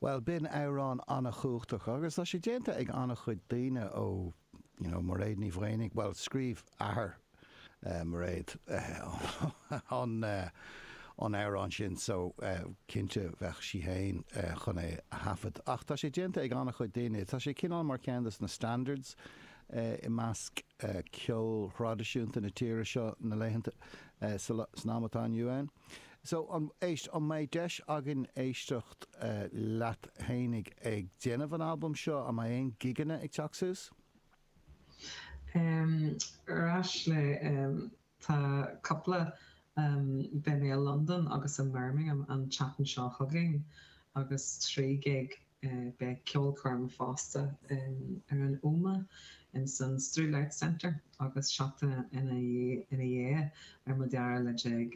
Bhuel, b'in amhrán an-chumhachtach agus tá sé déanta ag an-chuid daoine ó, you know, Mairéad Ní Mhaonaigh, bhuel, scríobh athair Mhairéad an amhrán sin so cinnte bheadh sí féin chun é a thaifead. Ach tá sé déanta ag an-chuid daoine, tá sé cineál mar cheann de na standards i measc ceol thraidisiúnta na tíre seo na laethanta, san am atá inniu ann. So, an, éist, an mbeidh deis againn éisteacht leat fhéinig ag déanamh an albaim seo? An mbeidh aon gigeanna ag teacht suas? Um, ar ais le, um, tá cúpla, um, beidh mé i Londain agus i mBirmingham an tseachtain seo chugainn agus trí ghig Beidh ceolchoirm fosta ar an Ómaigh ins an Strule Arts Centre agus seachtain ina dhiaidh ar an dara lá déag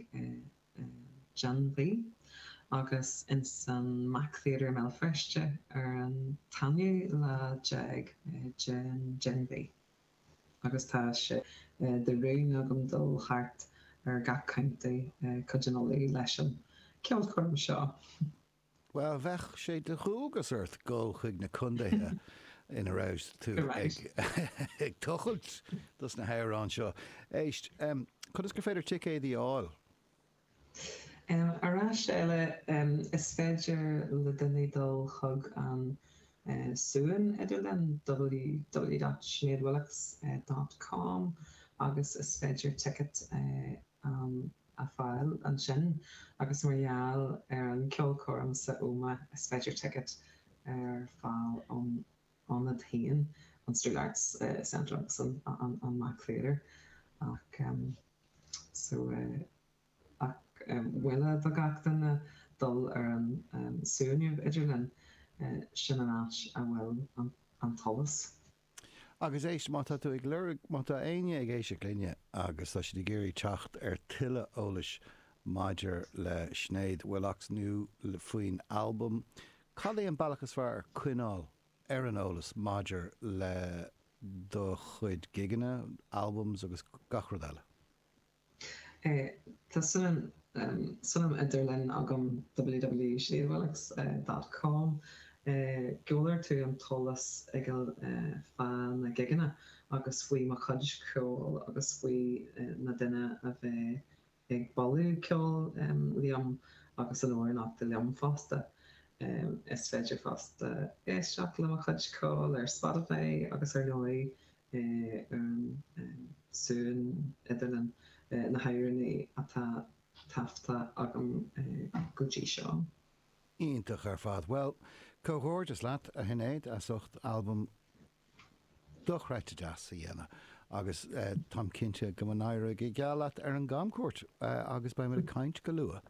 den mhí agus ins an MAC Theatre i mBéal Feirste ar an t-aonú lá déag den mhí agus tá sé de rún agam dul thart ar gach contae i gCúige Uladh leis an ceolchoirm seo. Bhuel, bheadh sé de dhualgas ort dul chuig na condaetha ina raibh tú ag tochailt dos na hamhráin seo. Éist, conas gur féidir ticéadaí a fháil? Arís eile, is féidir le duine dul chuig an suíomh idirlín, www.sineadwillox.com, agus is féidir ticéad a a fháil ansin agus mar gheall ar an cheolchoirm san Ómaigh is féidir ticéad a fháil ón ionad féin, an Strule Arts Centre agus an MAC Theatre ach so ach mholfainn do gach duine dul ar an suíomh idirlín, sin an áit a bhfuil an t-eolas. Agus éist, má tá tú ag lorg, má tá éinne ag éisteacht linne agus tá siad ag iarraidh teacht ar tuilleadh eolais maidir le Sinéad Willox nó faoin albam, cad é an bealach is fearr coinneáil ar an eolas maidir le do chuid gigeanna, albums agus gach rud eile? Tá suíomh, suíomh idirlín agam www.sineadwillox.com Gheobhaidh tú an t-eolas uilig fá na gigeanna agus faoi mo chuid ceoil agus faoi na daoine a bheidh ag bualadh ceoil liom agus ag amhránaíocht liom fosta. Is féidir fosta éisteacht le mo chuid ceoil ar Spotify agus ar ndóigh Éireann, suan idir na hÉireannaigh atá taifeadta agam go dtí seo. Iontach ar fad. Bhuel, comhghairdeas leat, a Shinéad, as ucht albam dochreidte deas a dhéanamh agus táim cinnte go n-éireoidh go geal leat ar an gcamchuairt agus beimid ag caint go luath.